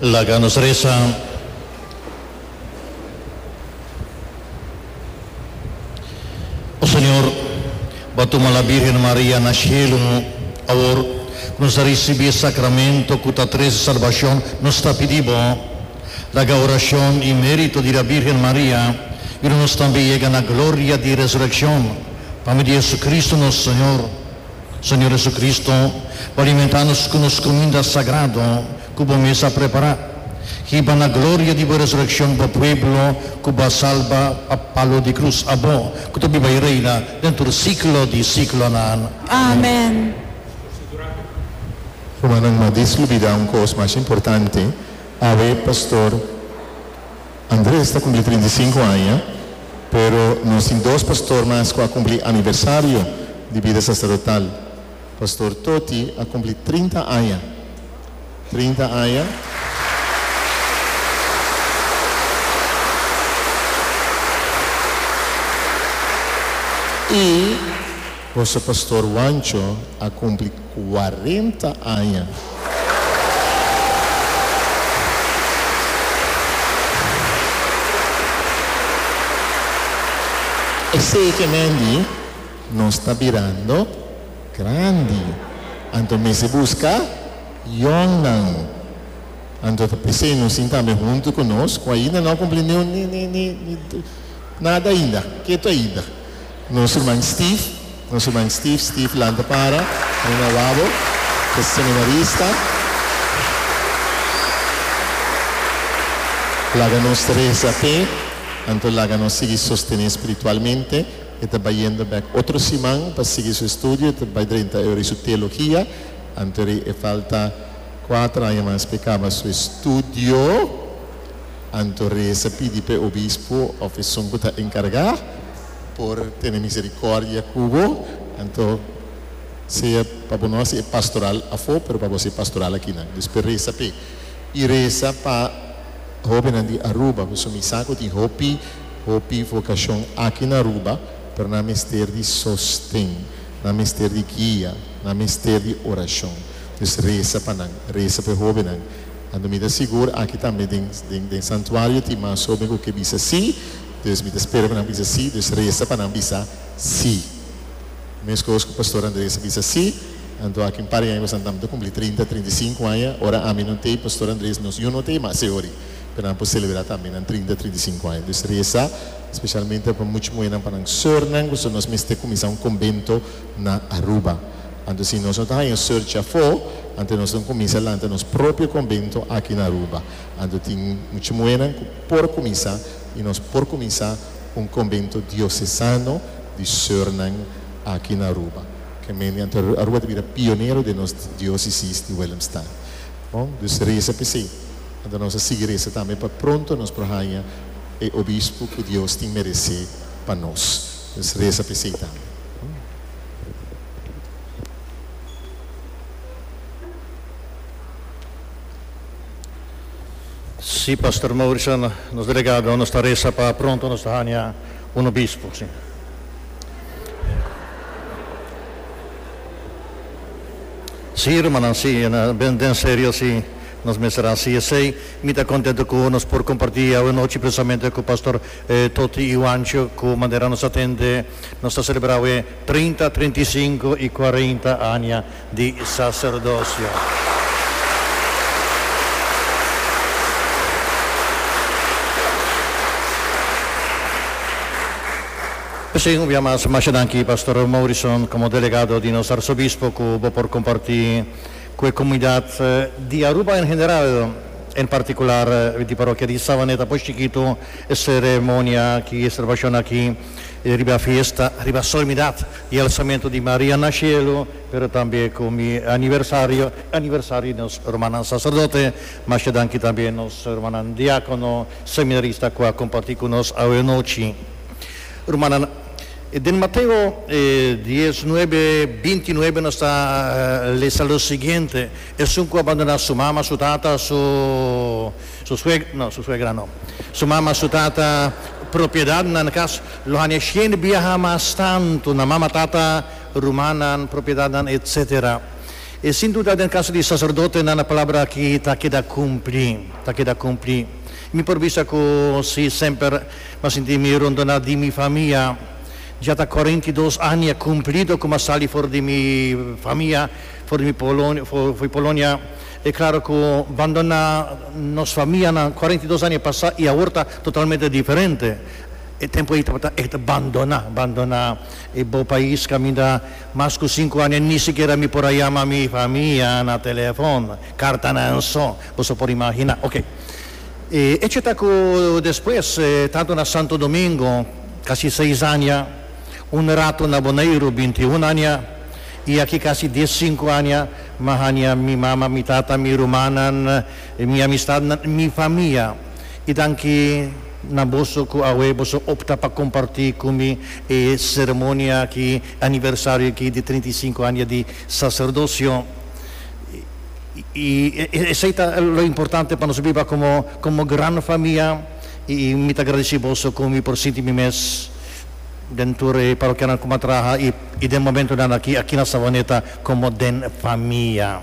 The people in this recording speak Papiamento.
Laga nos resa. O Señor, bo a tuma la Bírgen Maria na shelu. Awor ku nos a risibí e sakramentu ku ta trese salbashon, nos ta pidí bo, laga orashon i mérito di la Bírgen Maria yuda nos tambe yega na gloria di resurekshon, pa medio di JesuCristu nos Señor. Señor Jesucristo, bo a alimenta nos cu nos cuminda sagrado cu bo mes a prepara. Hiba na gloria di bo resureccion bo pueblo cu bo a salba pa palo di cruz. Abo cu ta biba y reina den tur siglo di siglonan. Amen. Rumannan, no a dislubida un cos mas importante, Awe, Pastor. Andres ta cumpli trinta i sinku aña, pero nos tin dos pastor mas cu a cumpli aniversario di bida sacerdotal. Pastor Toti a cumpli trinta aña. Trinta aña. Y boso pastor Juancho a cumpli. cuarenta aña. Esekimendi nos ta birando grandi, anto mester busca yongnan anto ta p'esey nos tin tambe hunto cu nos cu ainda no a cumpli ni nada ainda ketu ainda. Nos ruman Steve, nos ruman Steve, Steve lanta para, bring e wabo, ku e seminarista. Laga nos resa p'e, anto laga nos sigui sostené spiritualmente. E ta bayendo bèk otro siman pa sigui su estudio, e ta bai drenta euri su teologia, anto euri e falta kuater aña mas p'e kaba su estudio. Anto resa pidi p'e obispo òf esun ku ta enkargá. por tene misericordia cu bo. Anto sea pa bo no haci e pastoral afo, pero pa bo haci e pastoral akinan. Dus pe reza p'e. Y reza pa hobennan di Aruba, pasobra mi sa cu tin hopi, hopi vocacion aki na Aruba, pero nan mester di sosten, nan mester di guia, nan mester di oracion. Dus reza pa nan, reza p'e hobennan. Anto mi ta sigur aki tambe den, den, den santuario tin mas hoben cu ke bisa si. Entonces mi ta spera cu nan bisa si, dus resta pa nan bisa si. Mescos cu Pastor Andres a bisa si, anto aki un par di aña pasobra nan ta cumpli trinta, trinta i sinku aña, ora ami no t'ei, Pastor Andres nos yuno no t'ei, ma esei hori pero nan por celebra tambe nan trinta, trinta i sinku aña. Dus resta specialmente pa much muhernan, pa nan surnan cu su nos mester cuminsa un conbento na Aruba. Anto si nos no ta haya sur dja afo, anto nos lo cuminsa lanta nos propio conbento aki na Aruba. Anto tin much muhernan cu. por kuminsá i nos por kuminsá un Konbento Diosesano di Sörnan aki na Aruba. Kemende ante Aruba ta bira pionero den nos diósisis di Willemstad. Bon, dus resa p'e se. Anto nos a sigui resa tambe pa pronto nos por haña e obispo ku Dios tin meresé pa nos. Dus resa p'e se tambe. Si Pastor Mauricio nos delegado nos ta resa pa pronto nos ta haña un obispo si. Si hermannan si den serio si nos mester haci esey mi ta contento cu nos por comparti awe nochi precisamente cu Pastor Toti y Juancho cu manera nos ta tende nos ta celebra awe treinta, treinta y cinco y cuarenta aña di sacerdocio. P'esei un bia mas masha danki Pastor Morrison como delegado di nos Arzobispo cu bo por comparti cu e comunidad di Aruba en general, en particular di Parokia di Savaneta por Chikitu e ceremonia ki ester ba shon aki. E riba fiesta, riba Solemnidad di Alzamiento di Maria na Cielo, pero tambe cu mi aniversario, aniversario di nos Rumannan Sacerdote, masha dan aki tambe nos Rumannan Diacono, Seminarista cu a comparti cu nos awe nochi. Rumannan, den Mateo dies nuebe, binti nuebe nos ta lesa lo siguiente, Esun cu a bandona su mama, su tata, su. Su suegra, no, su suegra no. Su mama, su tata, propiedadnan kas lo haña shien biaha mas tantu na mama, tata, rumannan, propiedadnan, etc. E sin duda den kaso di saserdotenan e palabra aki ta keda kumpli, ta keda kumpli. Mi por bisa ku si semper m'ha sinti mi rondoná di mi famia, dja ta kòrenta i dos aña kumplido ku m'ha sali for di mi famia, for di mi Polonia, E claro cu bandona nos famianan cuarenta y dos aña pasa y awor ta totalmente diferente. E tempo ey tabata ect bandona, bandona e bo pais caminda mas cu cinco aña ni sikiera mi por a yama mi famia na telefon, cartanan so, boso por imagina. Ok. E hecho ta cu despues, tanto na Santo Domingo, casi seis aña, Un rato na Boneiru binti un aña i aki kasi dies sinku aña mi haña mi mama, mi tata, mi rumannan, mi amistadnan, mi famia. I danki na boso ku awe boso opta pa kompartí ku mi e seremonia aki, e aniversario aki di trinta i sinku aña di saserdosio. I esei ta lo importante pa nos biba komo gran famia i mi ta gradisí boso ku mi por sinti mi mes. den tur e parokianan ku m'a traha i den momentunan aki aki na Savaneta komo den famia.